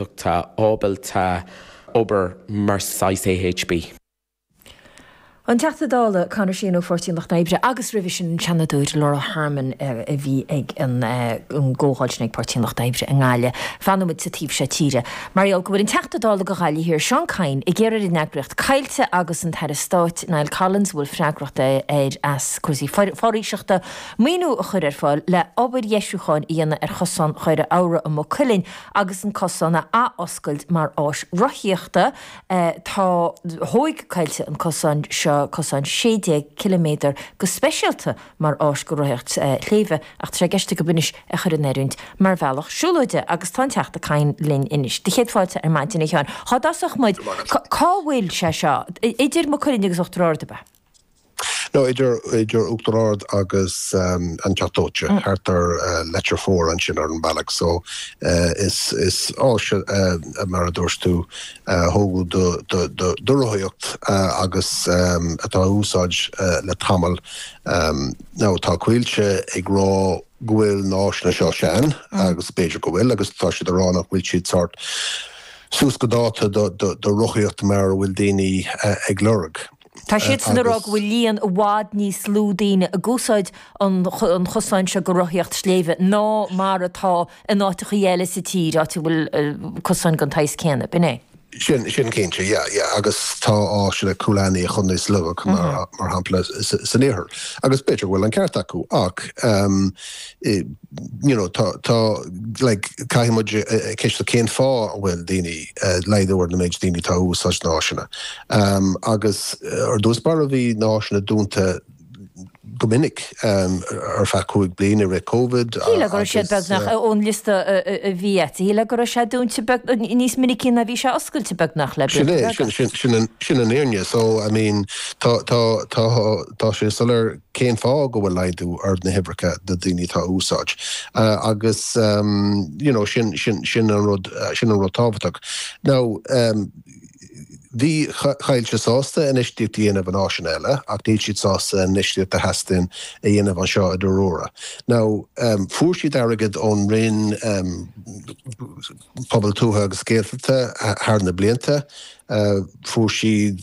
tá ábalta obair mar saghas AHB. An Teachta Dála Conor Sheehan ó Pháirtí an Lucht Oibre agus roimhe sin an Seanadóir Laura Harmon a bhí ag an gcomhdháil sin ag Páirtí an Lucht Oibre i nGaillimh. Fanfaidh muid sa taobh seo tíre. Mar gheall go bhfuil an Teachta Dála do Ghaillimh Thiar Seán Kyne ag iarraidh ar an eagraíocht Coillte agus an tAire Stáit Niall Collins a bhfuil freagracht air as cúrsaí foraoiseachta maoiniú a chur ar fáil le obair dheisiúcháin a dhéanamh ar chosán Dhoire Abhra i Maigh Cuilinn agus an cosán a athoscailt mar áis rothaíochta, tá thóig Coillte an cosán seo, cosán 16 km, go speisialta mar áis go rothaíocht sléibhe, ach tá sé i gceist acu anois é chur in oiriúint mar bhealach siúlóide, agus tá an Teachta Kyne linn anois. Do chéad fáilte ar maidin, a Sheáin. Cá dtosóidh muid? Cá bhfuil sé seo? Idir Maigh Cuilinn agus Uachtar Ard, ab ea? Nó idir Uachtar Ard agus an Teach Dóite, thart ar Leitir Fomhair ansin ar an bhealach so. Is áis a, mar a dúirt tú, a tógadh do rothaíocht agus atá a úsáid le tamall. Now tá Coillte ag rá go bhfuil na áiseanna seo sean, agus b'fhéidir go bhfuil, agus tá siad ag rá nach bhfuil siad sórt suas go dáta do rothaíocht mar a bhfuil daoine ag lorg. Tá siadsan ag rá go bhfuil líon i bhfad níos lú daoine ag úsáid an chosáin seo go rothaíocht sléibhe ná mar atá in áiteachaí eile sa tír, áit a bhfuil cosáin den tsaghas céanna. B'in é. Sin cinnte, yeah, yeah. Agus tá áiseanna Coolaney agus Kinnitty acu, mar shampla, san iarthar. Agus b'fhéidir go bhfuil an ceart acu, ach, eh, you know, tá, tá, like, caithfidh muid ceistiú cén fáth a bhfuil daoine, laghdú ar an méid daoine atá a úsáid na háiseanna. Agus ar dtús báire bhí na háiseanna dúnta go minic ar feadh cúig bliana i rith Covid. Shíl mé go raibh siad beagnach, ón liosta a bhí agat, shíl mé go raibh sé dúnta níos minicí ná a bhí sé oscailte beagnach le bliain. Sin é, sin an fhírinne. So, I mean, tá, tá, tá, tá sé soiléir. Cén fáth go bhfuil laghdú ar na huimhreacha de dhaoine atá a úsáid? Agus, you know, sin, sin, sin an rud, sin an rud tábhachtach. Now, bhí Coillte sásta infheistíocht a dhéanamh in áiseanna eile, ach níl siad sásta infheistíocht a theastaíonn a dhéanamh anseo i Derroura. Now, fuair siad airgead ón Roinn Pobail Tuaithe agus Gaeltachta thar na blianta, fuair siad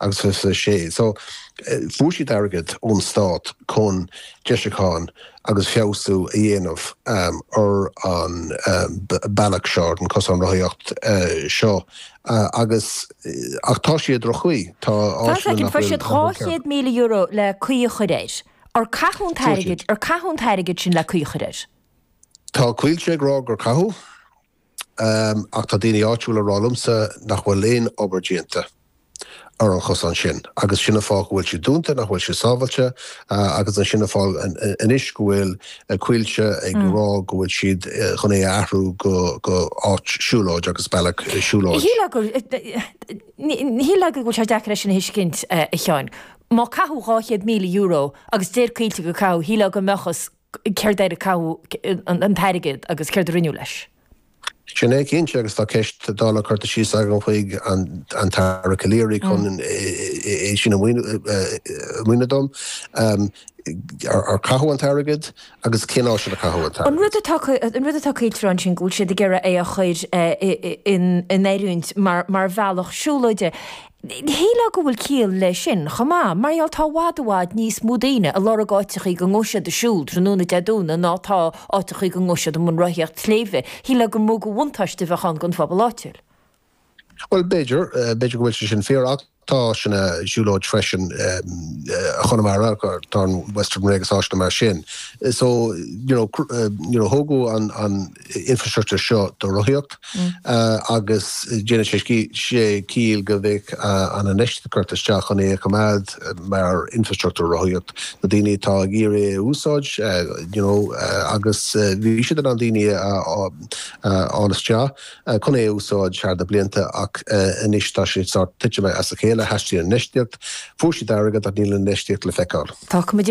agus is as sé. So, fuair siad airgead ón stát chun deisiúcháin agus feabhsú a dhéanamh ar an bealach seo, ar an cosán rothaíocht seo agus, ach tá siad i droch-chaoi. Tá áiseanna nach bhfuil ceart. Fuair siad €200,000 le caoi a chur air. Ar caitheadh an t-airgead, ar caitheadh an t-airgead sin le caoi a chur air? Tá Coillte ag rá gur caitheadh. Ach tá daoine áitiúla ag rá liomsa nach bhfuil aon obair déanta ar an chosán sin agus sin an fáth go bhfuil sé dúnta, nach bhfuil sé sábháilte agus sin an fáth anois go bhfuil Coillte ag rá go bhfuil siad chun é a athrú go áit siúlóid agus bealach siúlóid. Shílfeá go bhfuil sé deacair é sin a thuiscint, a Sheáin. Má caitheadh €200,000 agus deir Coillte gur caitheadh, shílfeá go mbeadh Céard ar caitheadh an t-airgead agus céard a rinneadh leis? Sin é, cinnte, agus tá ceist Dála curtha síos agam chuig an tAire Calleary chun é sin a mhíniú dom. Ar caitheadh an t-airgead agus cén áit ar caitheadh an t-airgead? An rud atá Coillte a rá ansin go bhfuil siad ag iarraidh é a chur in oiriúint mar bhealach siúlóide. Shílfeá go bhfuil ciall leis sin chomh maith, mar gheall tá i bhfad i bhfad níos mó daoine ag lorg áiteachaí go ngabhfaidh siad ag siúl tráthnóna Dé Domhnaigh ná tá áiteachaí go ngabhfaidh siad i mbun rothaíocht sléibhe. Shílfeá gur mó de bhuntáiste a bheadh ann don phobal áitiúil. Bhuel, b'fhéidir. B'fhéidir go bhfuil sé sin fíor, ach tá slite siúlóid freisin i gConamara, tá an Western Way agus áiteanna mar sin. So, you know, nuair a tógadh an, infrastructure seo do rothaíocht agus déanann sé sin ciall go mbeadh an infheistíocht curtha isteach chun é a choimeád mar infrastructure rothaíocht do dhaoine atá ag iarraidh é a úsáid you know agus bhí siad in ann daoine a fháil isteach chun é a úsáid thar na blianta ach anois tá sé sórt titithe as a chéile, theastaíonn infheistíocht, fuair siad airgead ach níl an infheistíocht le feiceáil. Tá cuma déanta.